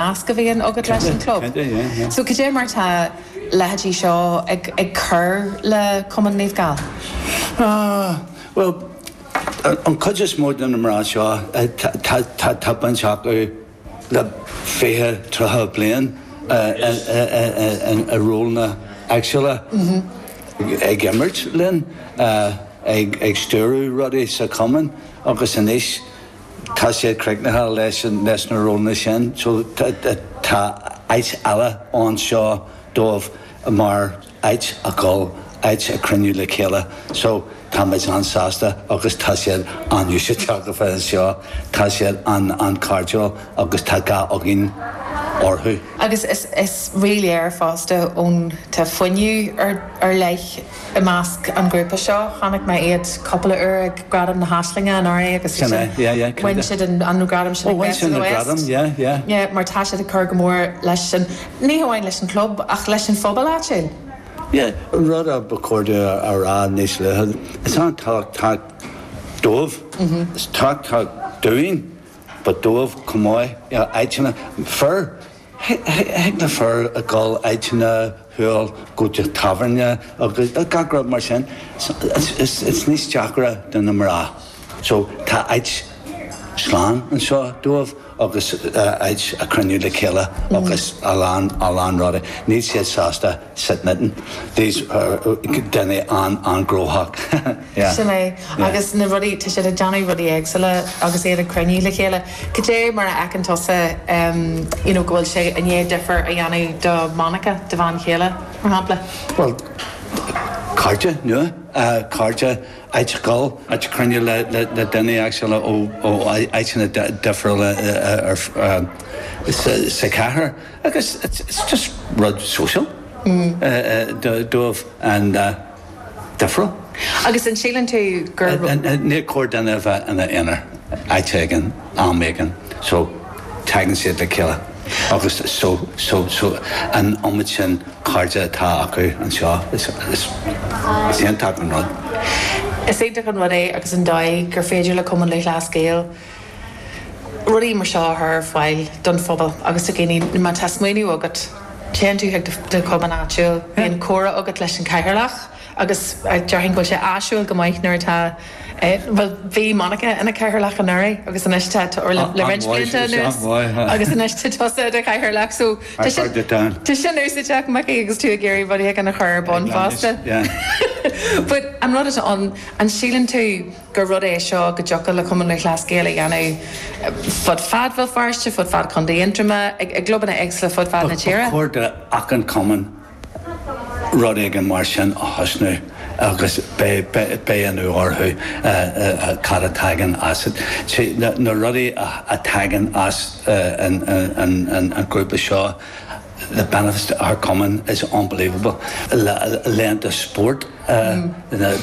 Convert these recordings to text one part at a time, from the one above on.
nasc a bhíonn agat leis an gclub. Cad é, cad é? So cad é mar tá leithéidí seo ag cur le Cumann Naomh Gall? Bhuel, an chuid is mó de na mná seo, tá baint acu le fiche, tríocha bliain i rólanna éagsúla, ag imirt linn, ag stiúradh rudaí sa Chumann agus anois, Tá siad críochnaithe leis na rólanna sin so tá áit eile anseo dóibh mar áit a dhul, áit a chruinniú le chéile. So tá muid an-sásta agus tá siad an-úsáideach a bheith anseo. Tá siad an-chairdiúil agus tá gá againn orthu. Agus is ríléir fosta go bhfuil fuinneamh ar leith. I measc an ghrúpa seo, chonaic mé iad cupla uair ag Gradaim na hAislinge anuraidh agus ansin bhain siad an gradam sin ag Best of the West. Mar tá siad ag cur go mór leis an, ní hamháin leis an gclub, ach leis an phobal. Ó, is ea. Rud a ba chóir a rá níos luaithe, is an-tábhachtach dóibh, is tábhachtach dúinn, but dóibh chomh maith, áiteanna, fir, Thig le fir a ghoil áiteanna, a dhul go dtí tábhairne agus gach rud mar sin. Is níos deacra do na mná. So, tá áit slán anseo dóibh agus áit a chruinniú le chéile agus a lán, a lán rudaí. Níl siad sásta. Said Mitten. These are daoine an-gnóthach. Yeah. Sin é. Yeah. Agus na rudaí, tá siad ag déanamh rudaí éagsúla agus iad ag cruinniú le chéile. Cad é mar a fheiceann tusa, um, you know, go bhfuil sé i ndiaidh difear a dhéanamh do Monica, do bhean chéile, mar shampla? Well, cairde nua, uh, cairde áit a dhul, áit cruinniú le, le, le daoine éagsúla ó, ó áiteanna di, difriúla, uh, ar, uh, sa, sa chathair. Agus is just rud sóisialta dóibh an-difriúil. Agus an síleann tú gur. Níor chóir duine a bheith ina aonar áit éigin am éigin so tagann siad le chéile agus so an iomad sin cairde atá acu anseo. Is iontach an rud. Is iontach an rud é agus an dóigh gur féidir le Cumann Lúthchleas Gael. rudaí mar seo a chur ar fáil don phobal agus do dhaoine. Má tá smaoineamh agat, téann tú chuig do chumann áitiúil, bíonn comhrá agat leis an gcathaoirleach agus déarfainn go bhfuil sé áisiúil go maith nuair atá, bhuel, bhí Monica ina cathaoirleach anuraidh agus anois tá tú le roinnt blianta anuas agus anois tá tusa i do chathaoirleach, so tá sin úsáideach, Micí, agus tú ag iarraidh rud éigin a chur ar bun fosta. But an rud atá ann, an síleann tú, gur rud é seo go dtiocfadh le Cumann Luthchleas Gael a dhéanamh fud fad Bhéal Feirste, fud fad Chontae Aontroma, i gclubanna éagsula fud fad na tíre. Ba chóir d'achan cumann rud éigin mar sin a thosnú agus beidh ionadh orthu cad a tagann as. Na rudaí a tagann as an ghrúpa seo, the benefits to our cumann is unbelievable laethanta spóirt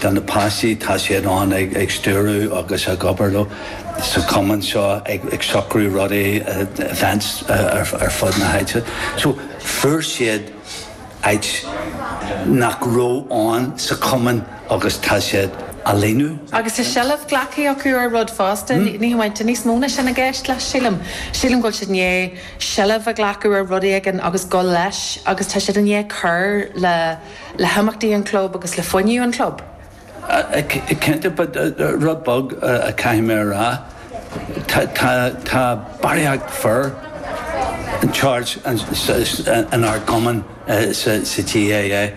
do na páistí, tá siad ann ag stiúradh agus ag obair sa chumann seo ag socrú rudaí events ar fud na háite so fuair siad áit nach raibh ann sa chumann agus tá siad á líonadh. Agus tá seilbh glactha acu ar rud fosta, ní hamháin, tá níos mó ná sin i gceist leis sílim, sílim go bhfuil siad i ndiaidh, seilbh a ghlacadh ar rud éigin agus a ghoil leis agus tá siad i ndiaidh cur le le himeachtaí an chlub agus le fuinneamh an chlub. Cinnte, but rud beag a chaithfidh mé a rá, tá barraíocht fir in charge in ár gcumann sa GAA.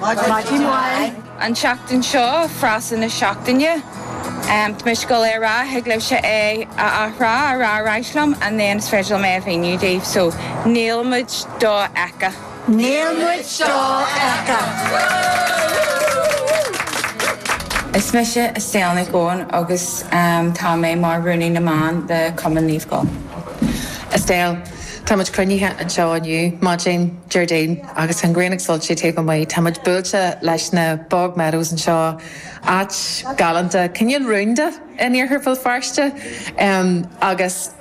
Maidin Mhaith. An tseachtain seo, Frása na Seachtaine. Tá mise ag gabháil é a rá, thig libhse é a athrá, a rá ar ais liom and then is féidir liom é a mhíniú daoibh. So, Níl muid dofheicthe. Níl muid dofheicthe. Is mise Estelle Nic Eoin agus tá mé mar Rúnaí na mBan le Cumann Naomh Gall. Estelle. Tá muid cruinnithe anseo inniu, maidin Déardaoin, agus tá an ghrian ag soilsiú taobh amuigh. Tá muid buailte leis na Bog Meadows anseo, áit galánta, cineál rúnda in iarthar Bhéal Feirste, agus.